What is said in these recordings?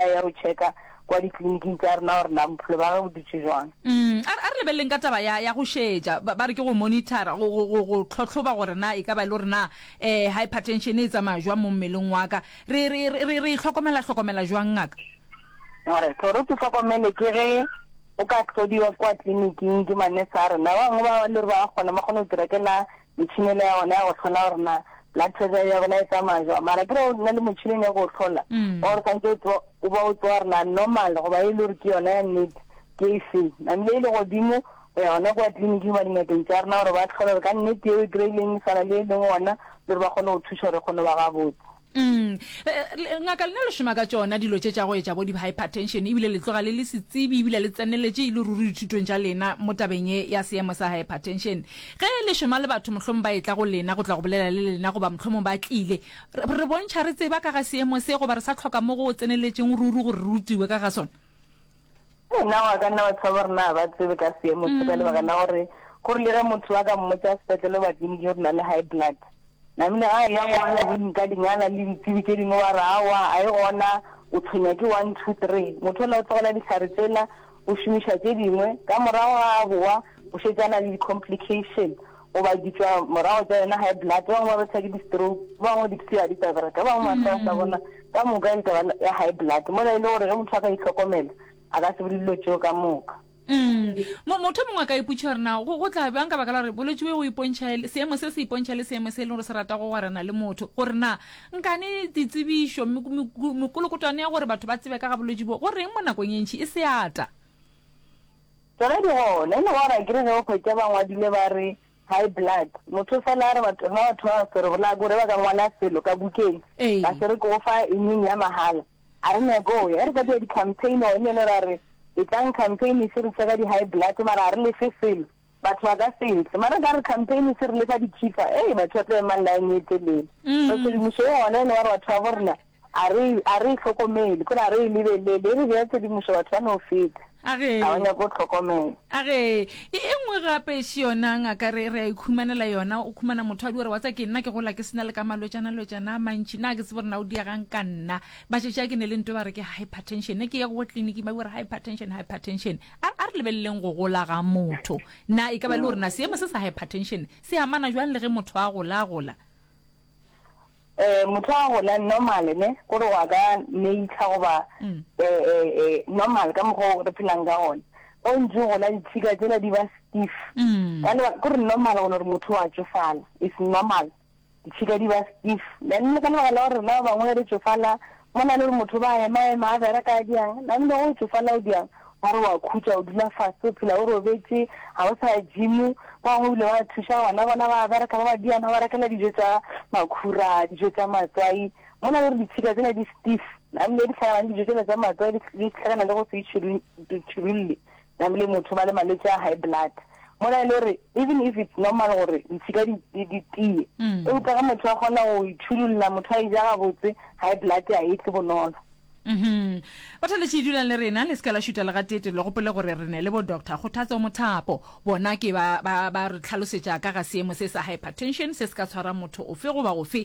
A ya go checka kwa ditleliniking tša rena gore na bophelo ba ge bo dutše jwang. Umm a re, a re lebeleleng ka taba ya, ya go šetša. Ba, ba re ke go monitor-a, go, go, go, go tlhotlhoba gore na e ka ba e le gore na eh, hypertension e tsamaya jwang mo mmeleng wa ka. Re, re, re, re, re e hlokomela, hlokomela jwang ngaka? A re, gore o se hlokomele ke ge o ka hlodiwa kwa tleliniking ke ma-nurse a rena. Ba bangwe ba le gore ba a kgona, ba kgona go dira ke la Metšhini e le ya gona ya go hlola gore na blood pressure ya bona e tsamaya jwa mara ke re o nna le motšhineng ya go hlola mm. or santse o ba o tsewa rena normal goba e le gore ke yona ya nnete ke e feng namile e le godimo go ya gona kwa tleliniking ba dingakeng tsa rena gore ba tlhole gore ka nnete eo e kry-ileng e tshwana le e leng ona le gore ba kgone go thuša gore e kgone ba gabotse Umm le ngaka lena le šoma ka tšona dilo tše tša go etša bo di hypertension ebile le tloga le le setsebi ebile le tseneletše e le ruri dithutong tša lena mo tabeng ye ya seemo sa hypertension. Ge le šoma le batho mohlomong ba etla go lena go tla go bolela le lena goba mohlomong ba tlile re re bontšha re tseba ka ga seemo se goba re sa hloka mo go tseneletšeng ruri gore re rutiwe ka ga sona. Na wa ka nna batho ba borena ga ba tsebe ka seemo se ka lebaka la gore go rile ge motho wa ka mmotsa sepetlele ba tleliniki gore na le high blood namile ga ya ngwana go nka dingala le ditsebi tse dingwe wa re awa a e gona o tshwenya ke one two three motho ola o tlogela ditlhare tsela o šomiša tse dingwe ka morago ga a bowa o šetsana le di-complication goba ditswa morago tsa yona high blood ba bangwe ba betha ke di-stroke ba bangwe dipsia di ka bereka ba bangwe matlha sa bona ka moka e taba ya high blood mola e le gore ge motho a ka itlhokomela a ka se bole dilo tseo ka moka mm. motho mongwe a ka iputša gore na go tla bjang ka baka la gore bolwetse bo go ipontšha seemo se se ipontšha le seemo se e leng gore se rata go gwarana le motho gore na nkane ditsebišo mekolokotwane ya gore batho ba tsebe ka ga bolwetse bo go reng mo nakong e ntšhi e seata Tsoge di gole. Ene gore akere ge o hwetša ba ngwadile ba re high blood, motho fela a re batho, rena batho ba ba swerego na gore ba ka ngwala selo ka bukeng ba se re ke go fa immune ya mahala. A re nyake go ya. Ge re ka dira di-campaign gone yone ra re etlang campaign e se re tše ka di-high blood mara ga re lefe selo. Batho ba ka se tle. Mara ka re campaign e se re lefa dithifa, ee batho ba tlo ema line e telele. Mm. So tshedimošo e gona e le gore batho ba bo rena a re a re e tlhokomele, kore a re e lebelele, e re bea tshedimošo batho ba no feta. A re Ga ba nyake go tlhokomela. a re e e nngwe gape e se yona ngaka re re a ikhumanela yona o khumana motho a di gore wa tsa ke nna ke gola ke sena le ka malwetšana lwetšana a mantši na ke tsebo rena o diagang ka nna ba šetše a ke ne le nto ba re ke hypertension ne ke ye go tleliniki ba bore hypertension hypertension A, a re lebeleleng go gola ga motho. Na e ka ba e le gore na seemo se sa hypertension se amana bjang le ge motho a gola, a gola? E, motho a gola normal, ne, gore wa ka nature goba e, e, e, normal ka mokgwa o re phelang ka gona. O ntse o gola ditshika tsela di ba stiff. Ka lebaka, ke gore normal gona gore motho wa tšofala. It's normal. Ditšhika di ba stiff. Nane le ka lebaka la gore rena ba bangwe re tšofala, mo na le gore motho o ba a ema-ema, a bereka, a diang, nane le ge o tšofala o diang, ba re o a khutša, o dula fase, o phela o robetše, ga o sa ya gym. Ba bangwe ebile ba thuša bana bona ba a bereka, ba ba diana, ba rekela dijo tša makhura, dijo tša matswai. Mo na le gore ditšhika tsena di stiff, nane le dihlagana le dijo tsela tša matswai, di hlagana le go se itšhirulle. Nam le motho ba le malwetši a high blood mola e le gore even if it's normal gore ditshika di di tiye eupša ge motho a kgona go itšhululla motho a eja gabotse high blood a e tle bonolo. Uhmm. Bathaletši dulang le rena le se ka la šuta legatete le gopole gore re ne le bo Doctor Kgothatso Mothapo. Bona ke ba ba ba re tlhalosetša ka ga seemo se sa hypertension se se ka tshwara motho ofe goba ofe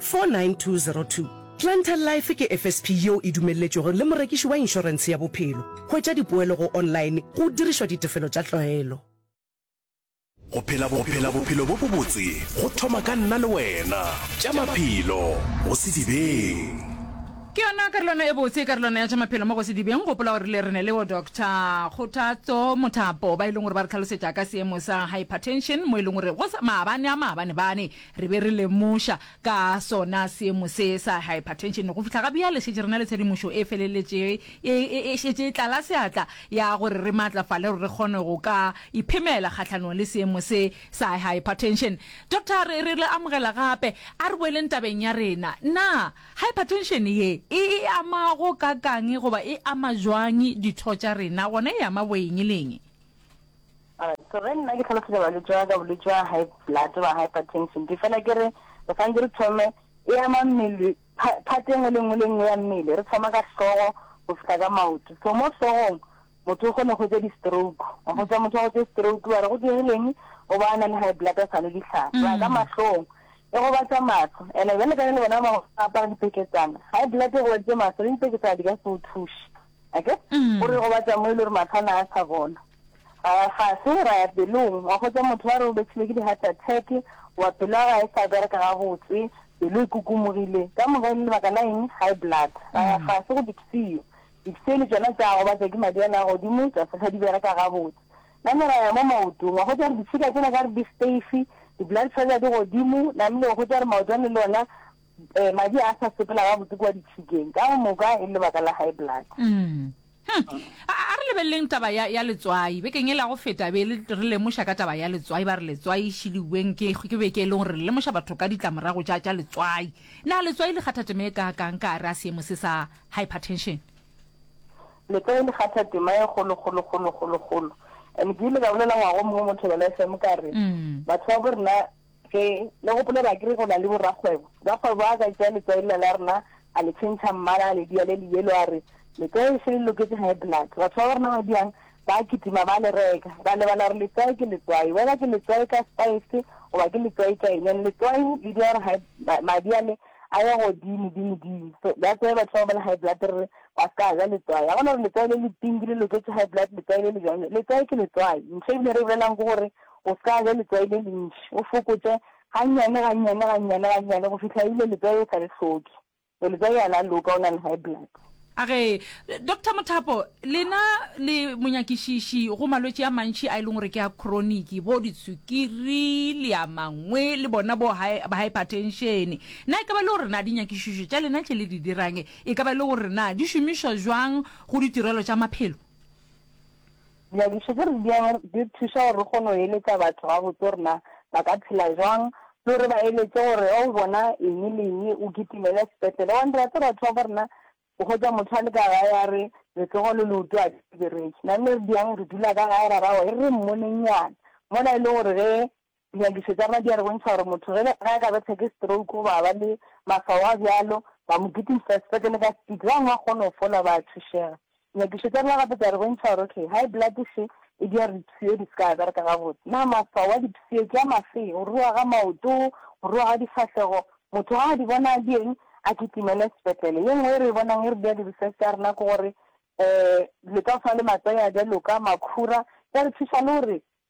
49202. Planter Life ke FSP yeo e dumelletšwego le morekiši wa inšorense ya bophelo. Hwetša dipoelo go online go dirišwa ditefelo tša tlwaelo. Go phela bophelo bo bobotse go thoma ka nna le wena. Tša Maphelo go Sedibeng. Ke yona karolwana e botse, karolwana ya Tša Maphelo mo go Sedibeng. Gopola gore rile re ne le yo Doctor Kgothatso Mothapo, ba e leng gore ba re tlhalosetša ka seemo sa hypertension, mo e leng gore go sa maabane a maabane-bane. Re be re lemoša ka sona seemo se sa hypertension. Go fihla ga bjale šetše re na le tshedimošo e feleletše e e šetše e tlala seatla ya gore re maatlafale gore re kgone go ka iphemela kgahlanong le seemo se sa hypertension. Doctor, re re le amogela gape. A re boeleng tabeng ya rena. Na hypertension ye e e ama go kaka'ng goba e ama jwang ditho tša rena, gona e ama boeng le eng? Alright, ge nna ke hlalosetša balwetši ba ka bolwetši ba high blood ba hypertension, ke fela ke re re santse re thome e ama mmele part e nngwe le nngwe le nngwe ya mmele, re thoma ka hlogo go fihla ka maoto. So mo hlogong motho o kgone go tsa di-stroke, wa go tsa motho wa go tse stroke ba re go dirileng o ba a na le high blood a sa nwe dihlare ba ka mm. mahlong e go ba tsa matlho ene bjale ka le bona ba apara dipeketsana high blood e go baditse matlho le dipeketsana di ka se o thuše ake mm. o re go ba tsa mo e le gore matlho a na a sa bona A ga se o raya pelong, wa hwetša motho wa re o betšilwe ke di-heart attack, wa pelo ya gae e sa bereka gabotse, pelo e kukumogile, ka moka e le lebaka la eng? High blood. A ga se go dipsio, dipsio le tšona tša gobatša ke madi a le a godimo, tša se hlwa di bereka gabotse. Name ra ya mo maotong, wa hwetša gore ditšhika tšela ka re di steife, di-blood pressure di godimo, namile o hwetša gore maoto a ne le ona Ee, madi a sa sepela gabotse kua ditšhikeng, ka go moka e le lebaka la high blood. Umm. Huh. A, a re lebeleleng taba ya, ya letswai. Bekeng e la go feta be le, re lemoša ka taba ya letswai, ba re letswai e šiliweng ke, ke beke e lego re le lemoša batho ka ditlamorago tša, tša letswai. Na letswai le kgatha tema e kaakang ka gare a seemo se sa hypertension? Letswai le kgatha tema e kgolo, kgolo, kgolo, kgolo, kgolo. And ke ile ka bolela ngwaga o mongwe mo Thobela FM ka re, Umm. Batho ba bo rena Ge le gopola ba kere go na le borakgwebo. Rakgwebo a ka tšea letswai lela la rena a le tšhentšha mmala a le dia le le yellow a re, Letswai le šele le loketše high blood. Batho ba ba rena ba diang ba a kitima ba a le reka. Ra lebala gore letswai ke letswai, whether ke letswai ka spice goba ke letswai ka eng. And letswai le dira gore high, madi a le a ye godimo dimo dimo. So that's why batho bao ba le high blood re re ba se ka ja letswai. Ga go na gore letswai le le pink le loketše high blood, letswai le le bjang. Letswai ke letswai. Ntho e bile re e bolela'ng ke gore O se ka ja letswai le lentši, o fokotše gannyane, gannyane, gannyane, gannyane go fihla ebile letswai o sa le hloke. Ee, letswai ga la loka, o na le high blood. A re, Doctor Mothapo, lena le monyakišiši go malwetši a mantši a e leng gore ke a khroniki, bo ditswikiri le a mangwe, le bona bo haephatenšene. Na e ka ba e le gore na dinyakišišo tša lena tše le di dirang e ka ba e le gore na di šomišwa bjang go ditirelo tša maphelo? Dinyakišo tše re di yang di thuša gore re kgone go eletša batho gabotse gore na ba ka phela bjang le gore ba eletše gore ge o bona eng le eng o kitimele sepetlele. Gobane re a tseba batho ba bo rena o hwetša motho a le ka gae a re letsogo le leoto ga di bereke. Nane re di yang re dula ka gae ra ra gore e re re mmoneng nyana mola e le gore ge Dinyakišo tša madi a re bontšha gore motho ge a ka bethwa ke stroke goba a ba le maswao a bjalo, ba mo kitimisa sepetlele ka sepiti, ba bangwe ba kgona go fola ba a thušega. Dinyakišo tša rena gape tša re bontšha gore okay, high blood še e dira gore dipshio di se ka bereka gabotse. Na maswao a dipshio ke a mafe? Go ruruga ga maoto, go ruruga ga difahlego. Motho ge a di bona a di eng? A kitimele sepetlele. Ye nngwe e re e bonang e re dira di-research tša rena ke gore um dilo tša go swana le matswai a bjaloka, makhura, di a re thuša le gore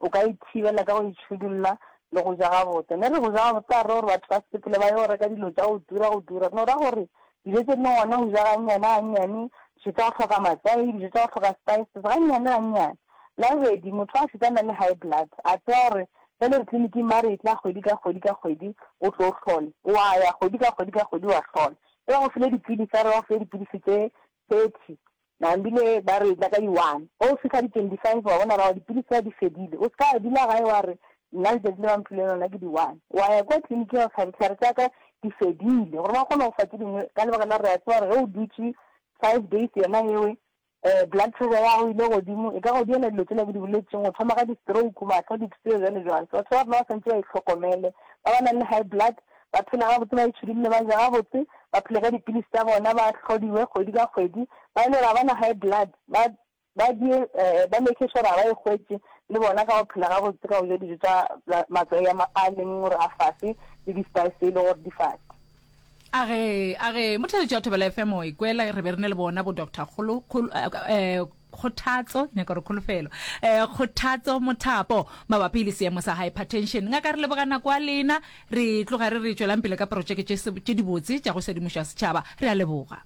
O ka e thibela ka go e tšhudulla le go ja gabotse. Ne re go ja gabotse a re gore batho ba sepetlele ba yo reka dilo tša go tura go tura. No ra gore dijo tše dingwe ngwana o ja gannyane gannyane, dijo tša go hloka matswai, dijo tša go hloka spices, gannyane gannyane. La bobedi, motho a šetše a na le high blood, a tseba gore bjale re tleliniking ba re etla kgwedi ka kgwedi ka kgwedi o tlo hlole. O a ya kgwedi ka kgwedi ka kgwedi wa hlola. E ba go file dipilisi a re ba go file dipilisi tše thirty, Nambile ba re etla ka di one ge o fihla di twenty five wa bona rago dipilisi ya di fedile o ska dula gae wa re nna letšatši le ba mphile lona ke di one wa ya kwa clinic ya go hlaba dihlare tsa ka di fedile gore ba kgone go fa tse dingwe ka lebaka la re a tseba gore ge o dutše five days yona ewe um blood pressure ya go ile godimo e ka go diela dilo tsela ke di boletseng o thoma ka di-stroke matlho dipseo jalo jalo so batho ba rena ba swantse ba itlhokomele ba ba nang le high blood ba phele gabotse, ba itšhidulile, ba je gabotse, ba phele ka dipilisi tša bona, ba hlodiwe kgwedi ka kgwedi, ba e le gore ga ba na high blood, ba ba die, um ba make sure gore ga ba e hwetše le bona ka go phela gabotse, ka go ja dijo tša matswai a a leng gore a fase le di-spice tse e le gore di fase. A ge, a ge, Motheletši wa Thobela FM o a ikwela, re be re ne le bona bo Doctor Kgolo, Kgolo, um. kgothatso nyaka gore kholofelo um kgothatso mothapo mabapi le seemo sa hypertension ngaka re leboga nako a lena re tloga re re tšwelang pele ka porotšeke tše dibotse tša go sedimoša setšhaba re a leboga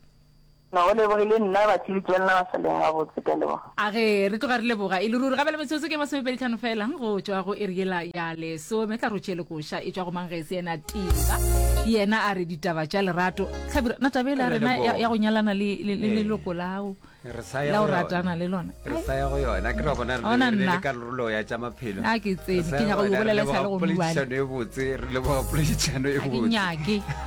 No, o lebogile nna ba tshebetsi ba lena ba sa leng gabotse ka leboga. A ge re tloga re leboga e le ruri gabela metsotso ke masomepedi tlhano fela go tšwa go ere yela ya lesome tla rotšhe le koša e tšwa go mang ge e se yena tiba yena a re ditaba tša lerato tlhabira na tabela rena ya go nyalana le leloko lao la o ratana le lona re sa ya go yona ke ra bona re le le karolo ya tsa maphelo a ke tsene ke nyaka go bolela sa le go buana re le go poledišano e botse